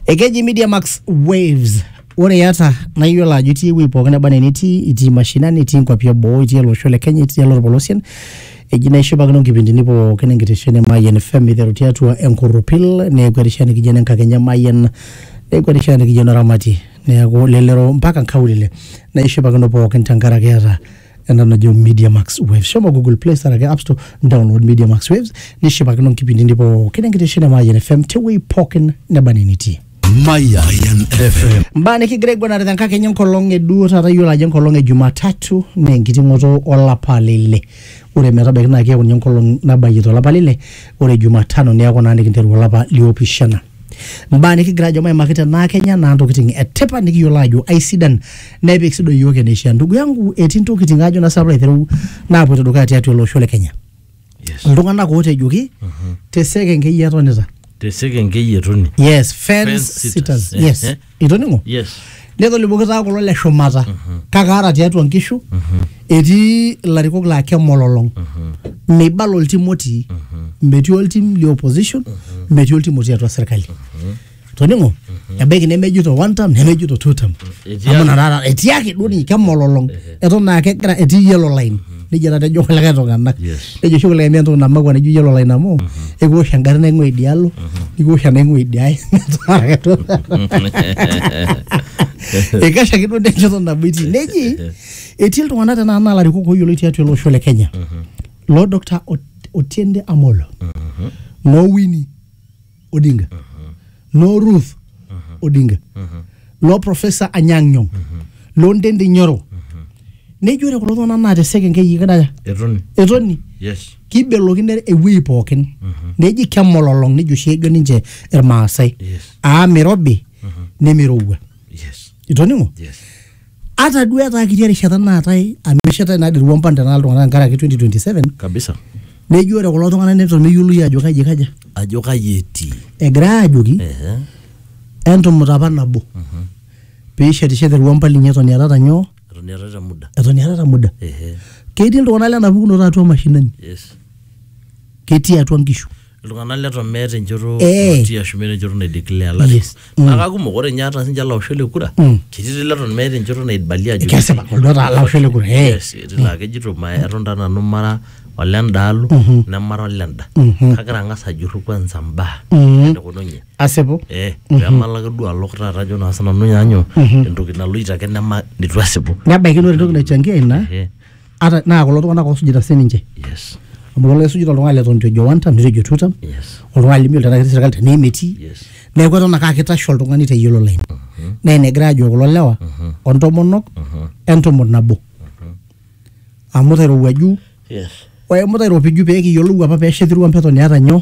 Ekeji Media Max Waves. Ore iyata naa iyiolo ajo itii ewueji pookin neba enaa enitii, itii mashinani, itii nkuapi eboo, itii ele osho le Kenya, itii ele olpolosien. Eji naa ishipakino nkipindini pookin enkitesheni e Mayian FM iteru tiatua enkorropil neeku erishata nikijo ene nkakeny e Mayian, neeku erishata nikijo eno ramatie. Neeku lelero mpaka nkaulele. Naa ishipakino pookin tenkaraki iyata ena najo media max waves shomo google play store ake app store download media max waves nishipakino nkipindini pookin enkitesheni e mayian fm tewuei pookin neba nenitii Mayan FM. mbaa nikigira aiguanare tenkakenya enkolong eduo taata iyiolo ajo enkolong e jumatatu naa enkiting'oto olapa lile ore metabaiki naa keeku ninye enkolong nabayie tolapa lile ore jumatano neeku naa nikinteru olapa liopishana mbaa nikigira ajo maimaki tenaa kenya naa ntokitin etipat nikiyiolo ajo aisidan nepik sido iyiook eneishaa ndugu yangu etii ntokitin ajo nasipa aiteru naapoito dukuya tiatua ele osho le kenya Yes. iltung'anak ootejoki te sekenkei etonita Te sekenkei etoni. yes fence Fence sitters sitters. yes Eh, eh. itoning'o yes netolimuoki taa kulo le shumata kake ata tiatua nkishu etii ilarikok laa kemololong meibala oltim otii metii oltim le opposition metii oltim otii atua serkali toning'o ebaiki nemejito one term nemejito two term Etii amu ake. nakata etii ake duo ninye kemololong eton naa kegira etii yellow line nejia taata ejo kulikae tung'anak Yes. nejo oshi kulikae mee entoki namakwa nejo iyiolo olaina amu ekiwosh engarri naing'ua idialo nikiwosh enaing'ua idiae ikash ake duo nenchoto nabo itii neji etii iltung'anak tenaa naa larikok ooyioloi tiatua ele osho le kenya loo Dr. Ot- otiende amolo noo wini Odinga loo Ruth Odinga loo Professor Anyang' Nyong' loo Ntendi Nyoro nejo ore kulo tung'anak naa te sekenkei ikidaya etoni etoni yes kibelokino ewueji pookin neji kemololong nejo oshi ejo ninche irmaasai Yes. aa mirobi nemirowua yes itoning'o yes ata duo etaa kiti erishata naatae amu eshetae naa dii irwompan tenaa iltung'anak tenkaraki 2027 kabisa neji ore kulo tung'anak neton meyioloi ajo kaji kaja ajo kaji etii egira ajoki Ehe. entumut apa nabo piishetishete irwompan linyi eton iatata nyoo eton iatata muda eton iatata muda Ehe. ketii iltung'anak lena pukunoto atua mashinani yes ketii atua nkishu iltung'anak leton meeta enchoto Eh. natii ashu meeta enchoto naideclare olarikoni Yes. Mm. naa kakumok ore ninye ata sinche laoshok le kura Mm. ketii leton meeta enchoto naibalia ajo kesipa oldo taa laosho le kura eh. Yes, etii laa kejito ma eton taa nanu mara olendaalo Mhm. nemara olenda Mhm. kagira ang'as ajurru kwanza mbaa Mhm. enekununye asipu eh pemalaki duo alok taata ajo naa sinanu nyaanyo Mhm. entoki naloito ake nema nitu asipu nebaiki naa ore entoki naichangia ina Eh. ata naa kulo tung'anak oosujita sininche yes amu kelo aisujita oltung'ani leton itu ejo one term nitu ejo two term yes oltung'ani lemeyiolo tenaa ketii serkali tenaa emetii yes neeku eton ake aa kitashe oltung'ani te yellow line naa ina egira ajo kulo lewa ontomonok entomon nabo amu tairowuaju yes oemu tairopiju pee kiyiolou apa peesha etirua mpetoni eeta nyoo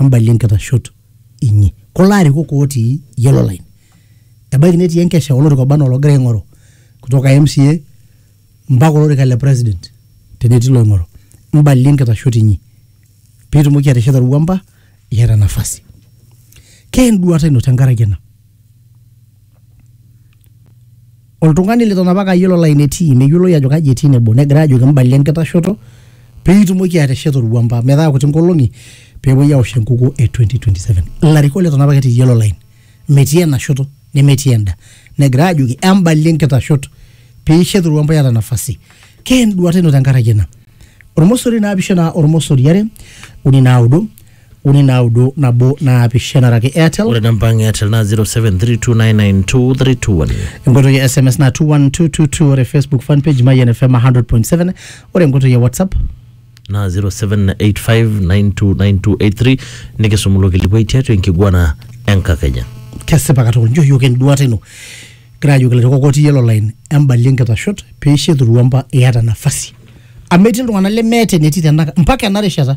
embalie nkitashot inyi. Kulo arikok otii yellow line ebaiki netii enkesha olorika oba anaa ologira aing'oru kutoka MCA mpaka olorika le president tenetii loing'oru. Mbalie nkitashot inyi pitumoki atesheta Ruwamba iyata nafasi. Kee enduata ino tenkaraki ena? oltung'ani leton apake ayiolo line etii meyioloi ajo kaji etii nebo negira ajoki mbalie enkitashoto peitumoki atesheta orwuamba metaa kuti nkolong'i peepuoi awosh enkukuo e 2027 ilarikok leton apake etii yellow line metii ena shoto nemetii enda negira ajoki embalie nkitashot piishet orwuamba iyata nafasi kee enduata ino tenkaraki ena ormosori naapishana ormosori are uni naudo uni naudo nabo naapishana araki airtel ore namba ang e airtel naa 0732992321 enkoitoi e sms na 21222 ore facebook fan page mayian fm 100.7 ore enkoitoi e whatsapp naa 0785929283 nikisum ilo kilikuai tiatua enkiguana enkakenya kesipa katukul njo yiok enduata ino kira ajoki ilairukok otii yellow line embalie nkitashot peisho eturuamba iyata nafasi amu etii iltung'anak lemeeta enetii tenaka mpaka ena rishata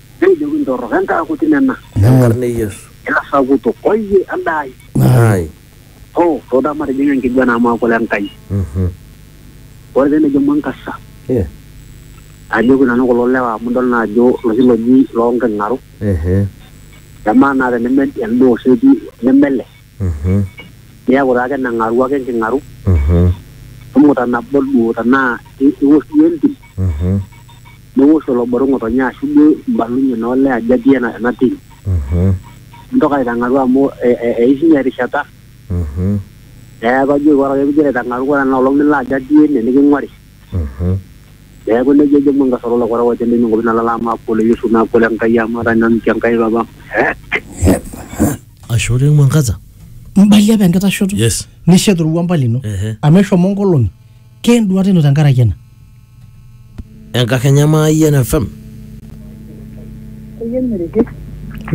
Nejoki, Ntorrok endaa kuti nena. Enkarna e Yesu. Ilasakutok, oyie endaa ai. Ai. Hoo, too taa matijing'a enkiguana amu aaku ole Nkai. Ore pee nejo Mwangaza, Ajoki nanu kulo lewa amu idol naa ajo iloshi looji loo nking'aru, emaa naa teneme elde oseeti neme ele, niaku taa keneng'aru ake enking'aru, imuta nabo duo tenaa iwosh duo entim, niwosh olobore ng'otonye ashu duo imbalunye naa olee ajo atii ena, ena tim Mhm. mintoki aitang'aru amu e, e, eishunye erishata Mhm. neeku ajoki ore ake pigira aitang'aru ore ena olong nilo ajo atii ene niking'uari Mhm. neeku nejia ejo Mungu esolo olokora wote nini ng'opi nalala amu akole Yesu naa akole Enkai amu etaa nanu te Enkai papa Ashe oleng Mwangaza. Mbalia apa enkitashoto. Yes. Nishet orua mbali ino. Ehe. Amu eshomo nkolong'i. Ke enduata ino tenkaraki ena? Enkakenya Mayian FM.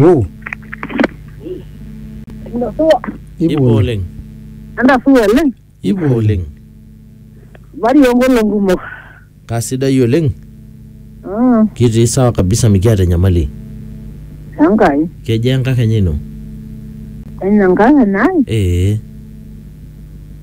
Wo. Ipo oleng. Entasuo oleng. Ipo oleng. Bari onkolong kumok. Kasidai oleng. Mm, Kitii sawa kabisa mikiata enyamali. Enkai. Kejaa enkakenya ino? Enye Enkai enai. Ee.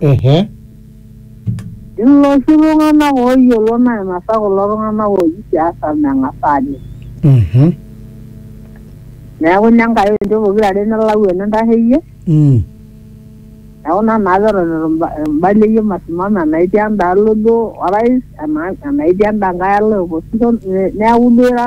Ehe. Iloshi tung'anak ooyiolo nainasa kulo tung'anak ooji siasa meng'as aajing. Mhm. Neeku ine Nkai oinchoo pokira are nilau enintasheyie. Mm. Neeku ina naa peton itu imba- imbaleyie masimamo enaitii endaalo duo orais ena enaitii enda nkae alo e opposition ne- neeku duo ira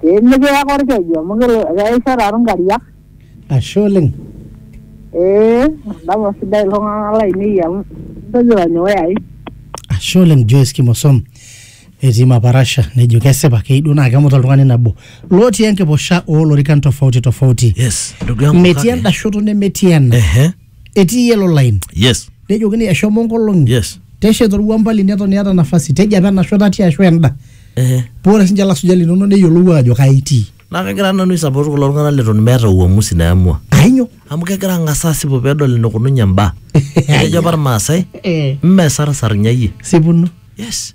pee mikiya korkeju amu kelo- keisho taatu nkariak ashe oleng ee dama sidai iltung'anak lainei amu kejo tanyoe ai ashe oleng Joyce Kimosom etii Maparasha nejo kesipa keyieu duo naa kemut oltung'ani nabo lotii enkiposha oolorikan tofauti tofauti Yes, ndugu yangu metii kake- enda shoto nemetii ena Ehe. etii yellow line yes nejokini eshomo nkolong'i yes teshet orwuamba lino eton iyata nafasi tejo apa enasho tatii ashu enda ehe paa ore sinche lasuja linono neyiolou ajo kaa itii naa kagira nanu aisapot kulo tung'anak leton meeta uamusi naamua ainyo amu kegira ang'as asipu pedol enikununye imbaa etejo apa irmaasai Eh. mme sarsar nyayie sipuno yes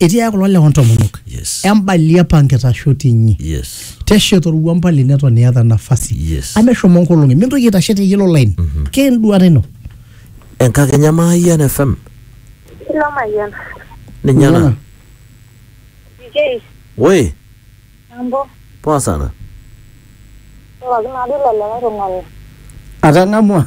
etiaya kulo lewa ntomonok Yes. embali apa nkitashoto inyi Yes. teshet orua mbali neton iyata nafasi Yes. ameshomo nkolong'i mintoki aitashe te yellow line ke enduata ino Enkakenya Mayian FM. Ilo mayian. Ninye ena. Jei, Woi, mambo. poa sana. Pookin ade ilo likae tung'ani. atang'amua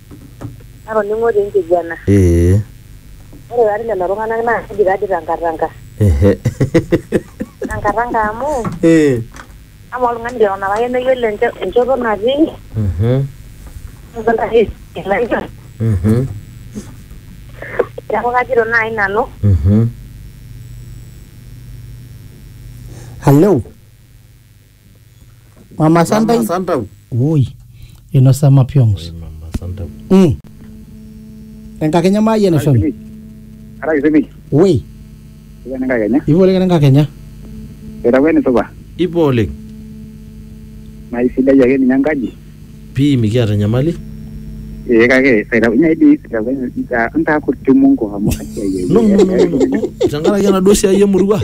Natoning'o te nkiguana. Ee. Ore taa lelo tung'anak naa keji taa dii tankatanka. Ehe. Tankatanka amu. Ee. Amaa oltung'ani leton apake meyiolo enchoto natii. Mhm. Mhm. Neeku kajito naai nanu. Mhm. Hello. mama santai Santau. woi inosa mapyongs Mama Santau. mm. enkakenya maayie naishomi Ara kisemi. woi Iwan enkae kenya. ivo oleng enkakenya Etakuwa enisupa. Ipo oleng. Naa isidai ake ninye enkaji. Pii mikiata enyamali. Ee kake etakuwa dii etakuwa ntaa kuti Mungu amu No, no, no, no, no. Tenkaraki enaduo siai emurua.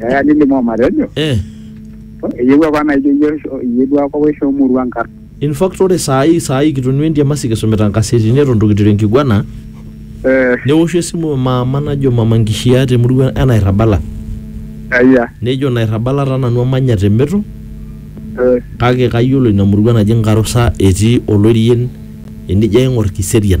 Eya nilimu omatejo eh. eyieu apa naijo iyie isho- iyie duo apa oisho emurua nkar in fact ore saa hii saa hii kitonua entiamasi kisumita nkasetini eton itu kiteru enkiguana Eh, neoshu esimu maama najo mama nkishia temurua enairrabala eya nejo nairrabala taa nanu amanya te meto Eh, kake kayiolo ina murua naji nkarusa etii olorien enijo aing'or kiserian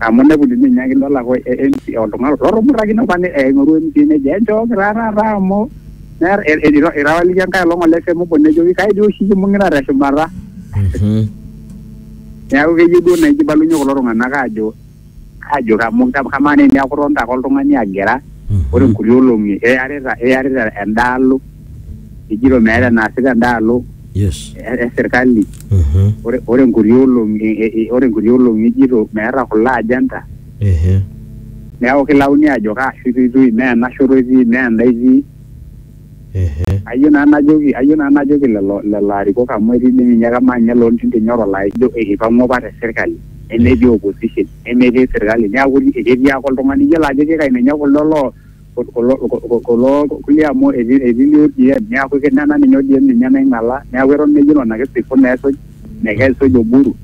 Amu inepu ninye inyiaki idol ake o- e- MC oltung'ani lotumutakine apa ne- aing'oru MC nejo enchooki taa taata amu meeta e- e- ira- irrawaliki enkae olong ole semu obo nejoki kai dii oshi kimbung'ita teshumata. Mhm. Neeku keyieu duo naijo ibalunye kulo tung'anak aajo aajo amu kamaa naa eniaku itonita ake oltung'ani agira ore nkuti olong'i iyarita iyarita endaalo ejito meeta enaasita endaalo yes e- e serkali Mhm. ore ore nkuti olong'i e- e- e- ore nkuti olong'i ejito meeta kulo agenda Ehe. neeku kilauni ajo kaa shoto itii mee ena shoto itii mee enda itii Ehe. ayieu naa najoki ayieu naa najoki lelo lelo arikok amu etii dii ninye kamaa ninye loontinte nyoro laa ijo eipang'ua apa te serkali nemetii opposition nemetii serkali neeku ketii ake oltung'ani iyiolo ajo kikai ninye kuldo loo kulo kulo- kulo kulie amu etii etii ninye ODM neaku ke- nena ninye ODM ninye naing'ala neaku eton meyiolo ina kisifu neesuj nekesuj Oburu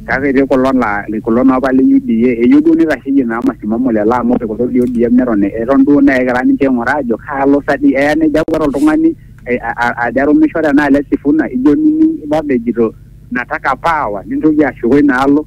kake etii kulo laa kulo naa apa le UDA eyieu duo neitasheyie naa masimamo lelo amu ore kulo le ODM neton eton duo naa egira ninche aing'uraa aajo kaalo sa dii eya nejo ake ore oltung'ani ai- a- a- ajo arumisho tenaalo e Sifuna ijo nining' Babu ejito nataka power nintoki ashuko ina alo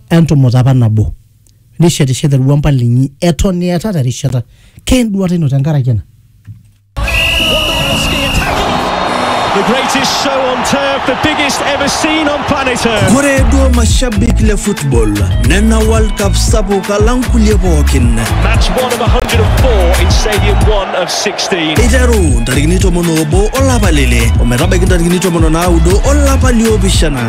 entumuta apa nabo nishetishete orwampa linyi eton iatata erishata keenduata ino tenkaraki ena Podolski attacking. The greatest show on turf, the biggest ever seen on planet Earth. Ore duo mashabik le football nena World Cup sapuk alang kulie pookin. Match 1 of 104 in Stadium 1 of 16. Eiteru ntarikini tomon oobo olapa lele ometabaiki ntarikini tomon o naudo olapa liopishana